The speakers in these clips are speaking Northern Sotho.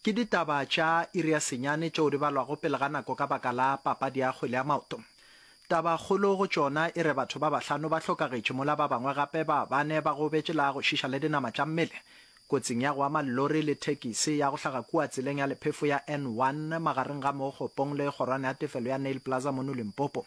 Ke ditaba tša iri ya senyane tšeo di balwago pele ga nako ka baka la papadi ya kgwele ya maoto. Tabakgolo go tšona e re batho ba bahlano ba hlokagetše mola ba bangwe gape ba bane ba gobetše la go šiša le dinama tša mmele kotsing ya go ama llori le thekisi ya go hlaga kua tseleng ya lephefo ya N1 magareng ga mo Kgopong le kgorwana ya tefelo ya Nail Plaza mono Limpopo.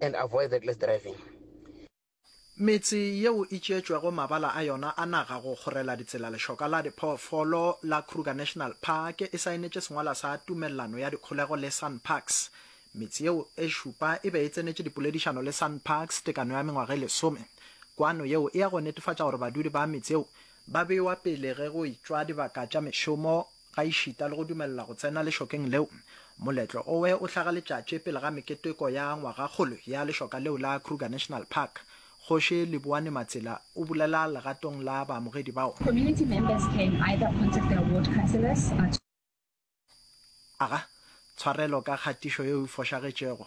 and avoid reckless driving. Metse yeo e tšeetšwego mabala a yona a naga go kgorela ditsela Lexoka la diphoofolo la Kruger National Park e saenetše sengwalwa sa tumellano ya dikgolego le Sanparks. Metse yeo e šupa e be e tsenetše dipoledišano le Sanparks tekano ya mengwaga e lesome. Kwano yeo e ya go netefatša gore badudi ba metse yeo ba bewa pele ge go itšwa dibaka tša mešomo Gaešita le go dumelela go tsena lešokeng leo, moletlo owe o hlaga letšatši pele ga meketeko ya ngwagakgolo ya lešoka leo la Kruger National Park. Kgoši Leboane Matsila o bulela legatong la baamogedi bao. Community members can either contact their ward councillors to. Aga tshwarelo ka kgatišo yeo e fošagetšego.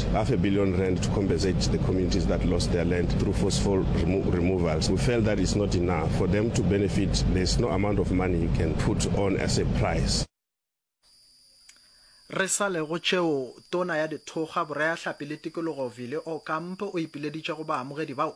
cost half a billion rand to compensate the communities that lost their land through forceful remo removals. We felt that it's not enough. For them to benefit, there's no amount of money you can put on as a price. Re sa le go tšeo, Tona ya Dithokga, Boreahlapi le Tikologo Vili Okamp o ipileditše go baamogedi bao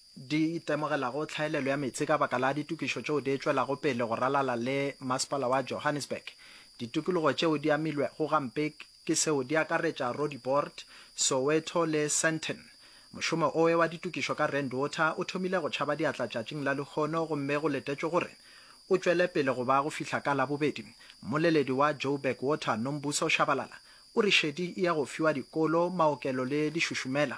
di itemogelago tlhaelelo ya meetse ka baka la ditokišo tšeo di etšwelago pele go ralala le Masepala wa Johannesburg. Ditokologo tšeo di amilwego gampe ke seo di akaretša Roodepoort, Soweto le Sandton. Mošomo owe wa ditokišo ka Rand Water o thomile go tšhaba diatla tšatšing la lehono gomme go letetšwe gore o tšwele pele go ba go fihla ka Labobedi. Mmoleledi wa Joburg Water, Nombuso Shabalala, o re šedi e ya go fiwa dikolo, maokelo le dišušumela.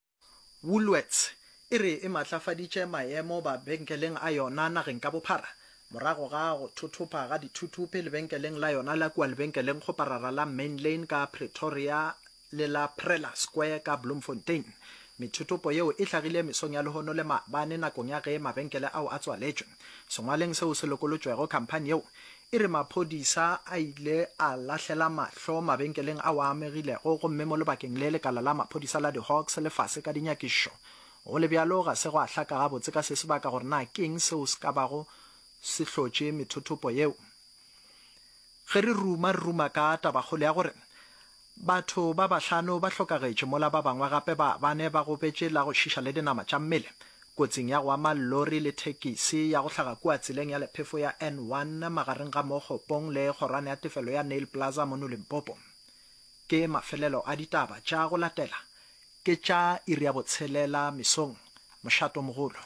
Woolworths e re e matlafaditše maemo babenkeleng a yona nageng ka bophara morago ga go thothopha ga dithuthupe lebenkeleng la yona la kua lebenkeleng goparara la Main Lane ka Pretoria le la Prela Square ka Bloemfontein. Methuthupo yeo e hlagile mesong ya lehono le maabane nakong ya ge mabenkele ao a tswaletšwe. Sengwaleng seo se lokolotšwego khamphani yeo e re maphodisa a ile a lahlela mahlo mabenkeleng ao a amegilego gomme mo lebakeng le lekala la maphodisa la di-Hawks le fase ka dinyakišo. Go le bjalo, ga se gwa hlaka gabotse ka se se baka gore na ke'ng seo se ka bago se hlotše methothopo yeo. Ge re ruma re ruma ka tabakgolo ya gore Batho ba bahlano ba hlokagetše mola ba bangwe gape ba bane ba gobetše la go šiša le dinama tša mmele kotsing ya go ama lori le thekisi ya go hlaga kua tseleng ya lephefo ya N1 magareng ga mo Kgopong le kgorwana ya tefelo ya Nail Plaza mono Limpopo. Ke mafelelo a ditaba tša go latela ke tša iri ya botshelela mesong mošatomogolo.